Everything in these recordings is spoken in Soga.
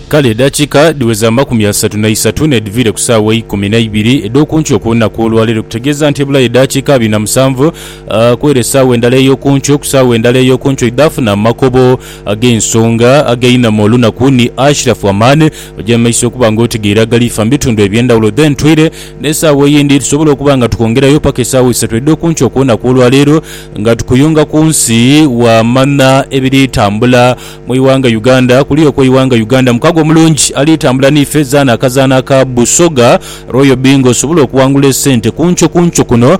Kale edakiika dhiweza amakumi asatu na isatu n'edhiviire ku saawa eikumi na ibiri edh'oku nkyo ku lunaku olwaleero, okutegeeza nti ebulayo edakiika abiri na musanvu kw'ere esaawa endala ey'oku nkyo. Ku saawa endala ey'oku nkyo idhaafuna amakobo ag'ensonga ag'einhama olunaku ni Ashraf Aman oja mu maiso okuba nga otegeire agaliifa mu bitundu eby'endhawulo. Then twire n'esaawa eyindi tusobole okuba nga tukongerayo paka esaawa isatu edh'oku nkyo ku lunaku olwaleero. Nga tukuyunga ku nsi wa manha ebiri tambula mu ighanga Uganda kuli okwo ighanga Uganda mukago omulungi ali tambula ni fe zaana akazaana aka Busoga Royal Bingo osobole okuwangula esente kunkyo kunkyo kuno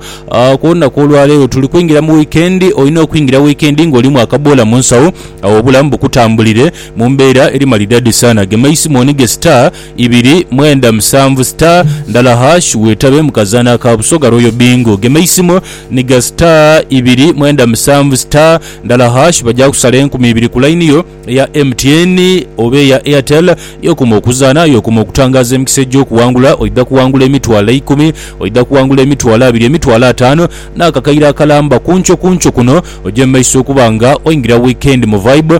ku lunaku olwa leero tuli kwingira mu wikendi olina okwingira wikendi nga olimu akaboola mu nsawo awo obulamu bukutambulire mu mbeera eri malidadi saana gema isimu onige star Ibiri, mwenda, musanvu, star, ndala hash wetabe mu kazaanha ka Busoga Royal Bingo. Gema eisimu ni ga star, ibiri, mwenda, musanvu, star, ndala hash bagya kusala enkumi ibiri ku line yo eya MTN oba eya Airtel. Y'okuma okuzaanha, y'okuma okutangaaza emikisa egy'okuwangula. Oidha kuwangula emitwalo eikumi, oidha kuwangula emitwalo abiri, emitwalo ataanu n'akakaire akalamba. Ku nkyo ku nkyo kuno ogye mu maiso okuba nga oingira wiikendi mu vibe.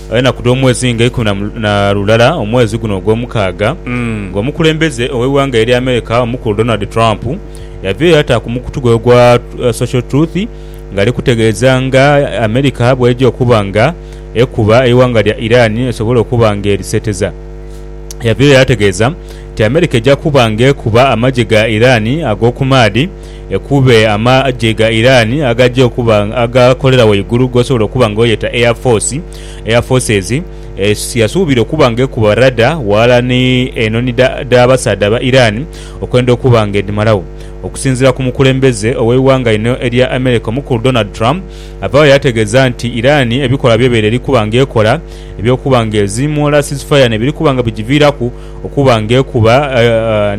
Enaku dh'omwezi nga ikumi na lulala omwezi guno ogwomukaaga, nga omukulembeze ow'eighanga erya America omukulu Donald Trump yaviirayo ata ku mukutu gwe ogwa Social Truth nga ali kutegeeza nga America bweja okuba nga ekuba eighanga lya Iran esobole okuba nga eriseteza. Yaviirayo yategeeza nti America eja kuba nga ekuba amagye ga Iran ag'okumaadhi, Ekube amagye ga Iran agagya okuba agakolera waigulu g'osobola okuba nga oyeta Air Force, Air Forces, yasuubira okuba nga ekuba radar ghalala ni enhonhi dh'abasaadha aba Iran okwenda okuba nga edhimalagho. Okusinziira ku mukulembeze ow'eighanga lino erya America omukulu Donald Trump avaagho yaategeeza nti Iran ebikolwa by'ebaire eri kuba nga ekola eby'okuba nga eziimuula ceasefire nebiri kuba nga bigiviiraku okuba nga ekuba